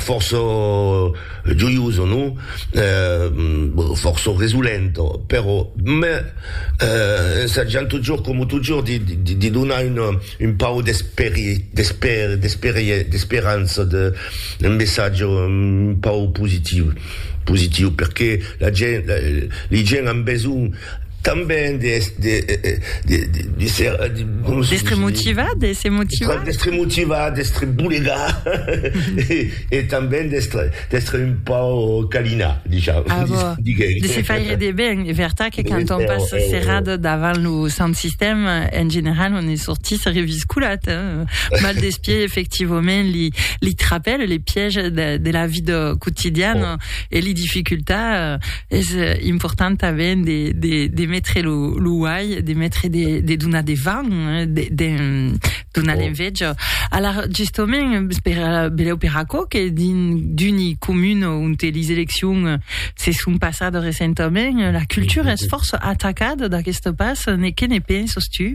Fòrça joiosa, non? Fòrça resolenta, però, me ensajant totjorn coma totjorn de, de, de donar una, un pauc d'esperi, d'esper, d'esperie, d'esperança, de, un messatge un pauc positiu, positiu, perqué la gent, li gent an besonh. Tanben de se motivar, de se motivar. D'èstre motivar, d'èstre bolegar e tanben d'èstre un pauc calinar, disham. A vò, de se faire de ben. E vertat que quand on passe serrat davant lo sant sistèm, en general on ne sortís reviscolat, mal des pieds, efectivament, li trapèl, les pièges de la vida quotidiana e li dificultats. es important tanben de, de, de metre lo, lo uai, de metre de, de donar de van, eh, de, de donar oh. l'enveja. Alors, justement, per, beleu per aquò que din d'uni comun on te les eleccions se sont passades recentament, la cultura es força atacada d'aquesta pas, ne que ne penses tu?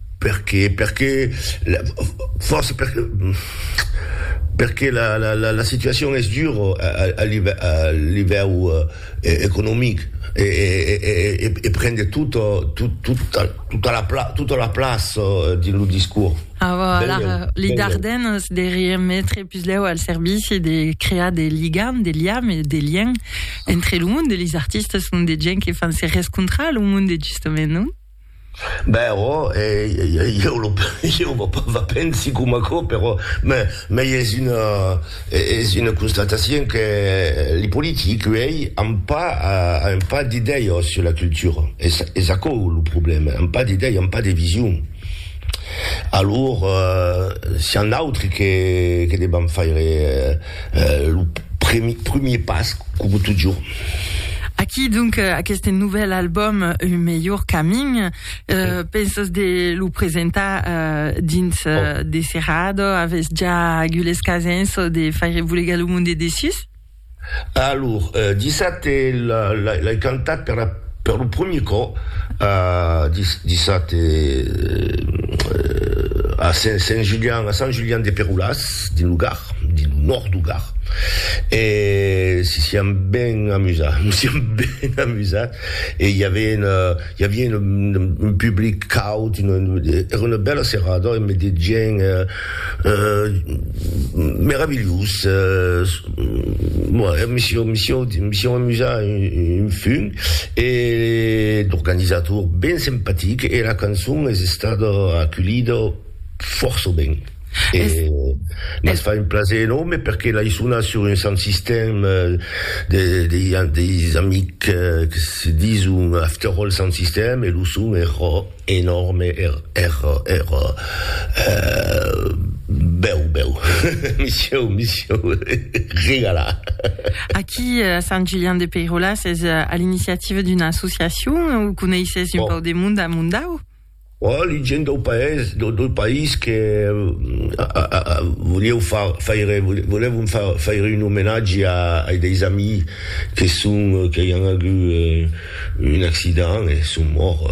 Perqué? Perqué la fòrça perqué perqué la la la la situacion es dura a a a live a livèu economic e e e e e pren de tot tot tota tota la pla tota la plaça dins lo discors. A vo a la li Dardenes de remetre puslèu al servici de crear de ligam de liam e de lien entre lo monde e lis artistes monde de gent que fan se rescontrar a lo monde justament non? Ben ò, ieu lo ieu vò pas va pensi coma aquò, però me mei es una es una constatacion que li politics uèi an pas an pas d'idèias sur la cultura, es es aquò lo problèma, an pas d'idèias, an pas de vision. Alor sián d'autri que que devan faire Lo premier pas, coma totjorn. Aquí donc aqueste novèl album Un melhor camin, pensas de lo presentar dins de serrada? Avètz ja agules casens de faire bolegar lo monde dessus? Alor, dissabte l'ai cantat per lo premier còp, dissabte a Sant Julian de Perolàs, dins lo Gard. dins lo nòrd du Gard e si siam ben amusats, nos siam ben amusats e i avien i avien un public caud, era una bèla serada e me de gent meravilhós, me sieu me sieu me sieu amusat un fum e l'organizator ben simpatic e la cançon es estada aculhida fòrça ben. E mos fa un plaser enòrme perque l'ai sonat sur un sant sistèm de deis amics que se dison After All Sant Sistèm e lo son èra enòrme, èra bèu bèu, me sieu me sieu regalat. Aquí a Sant Julian de Peiròla s'es a l'iniciativa d'una associacion o coneisses un pauc de monde a Mondau? Ò li gent dau paès, dau país que volieu faire, volèvon faire un omenatge ai deis amis que son, que i an agut un accident e son mòrt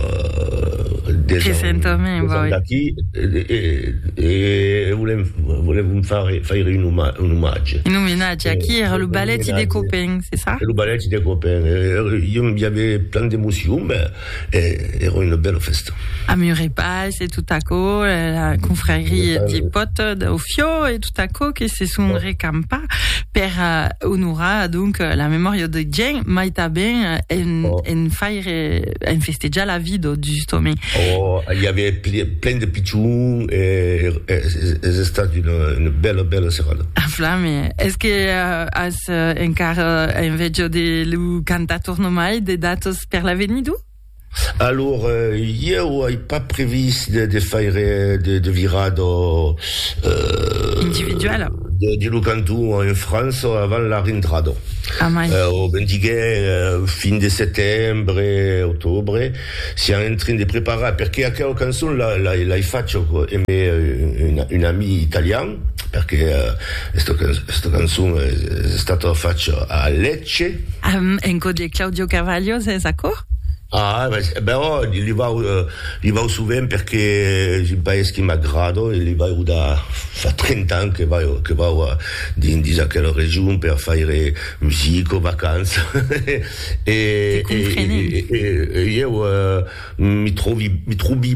des ans d'aquí e volèm, volèvon faire un omatge. Un omenatge, aqui èra lo balèti de Copèn, se ça? Lo balèti de Copèn, i aviá plan d'emocion, ben. E èra una bèla fèsta. A Muret Pas e tot aquò, la confrèria de Pòt dau Fiò e tot aquò que se son recampar per onorar donc la memòria de Gien, mai tanben en faire, en festejar la vida, justament. Oh, i aviá plen de pichons e es estat una bèla, bèla serada. A flame! Es que as encara enveja de lo cantator nomai de datos? per l'avenir d'u? Alor, ieu ai pas previst de, de faire de, de virar do... Euh, Individuala. De, de lo canton en França avant la rentrada. Amai. Eh, o ben diguè, eh, fin de setembre, octobre, siam en train de preparar, perque aquela cançon la, la, l'ai facha, co, emé, eh, un, un ami italian, perque esta cançon es estata facha a Lecce. En cò de Claudio Carvalho sens acò? Ah, però li vau, li vau sovent perque es un país qui m'agrada e li vau da fa 30 ans que vau, que vau dins aquela region per faire musica, vacança e ieu mi trovi, mi trovi.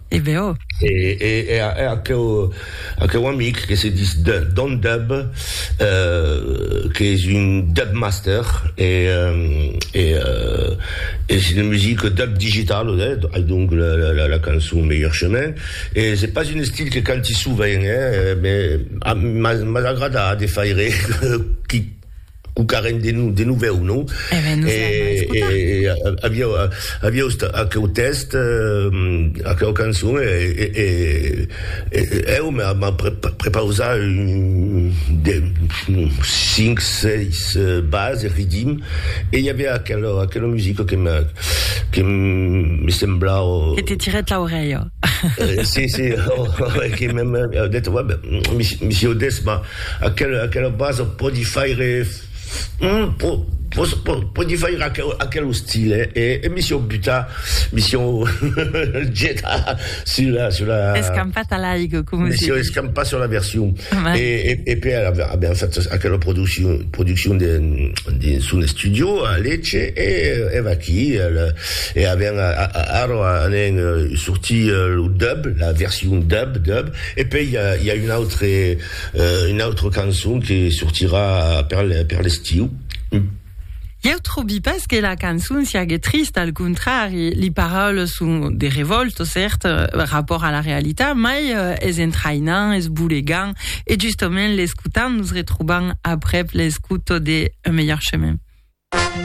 E ben oh! E, e, e a, a aqueu, aqueu amic que se dis de, Don Dub, euh, qu'es un Dub Master, e, e, euh, es une musique Dub digital, eh, ai donc la, la, la cançon Meilleur Chemin, e c'est pas un estil que canti sovent, eh, mais, a, mas, mas agrada de faire, qui, Cucarem de nu, de novèu, non? E ben, nos l'an a escotar. E aviá, aviá ust aqueu tèxt, aqueu cançon, e eu m'an prepausat de cinc, seis bases, riddim, e i aviá aquela, aquela musica que me, que me semblava. Que te tirèt l'aurelha. Si, si, que m'an dit, ouais, ben, monsieur Desma. Aquela aquela basa pòdi faire po po po pòdi faire aquel aquel ostil e e e mi siò butar mi siò getar sur la sur la Escampat a l'aigo coma mi se siò diu. escampat sur la version e e e per aver aver fait aquela produccion produccion de de son estudio a Lecce e e vaquí al e aven a a ara anen sortir lo dub la version dub dub E pei i a un autre un autre cançon que sortirà per per l'estiu. Ieu trobi pas que la cançon siague trista, al contrari, li paraules son de revòlta, cèrt, rapòrt a la realitat, mai es entraïnant, es bolegant, e justament l'escotant nos retrobam aprèp l'escouta de Un melhor chemin.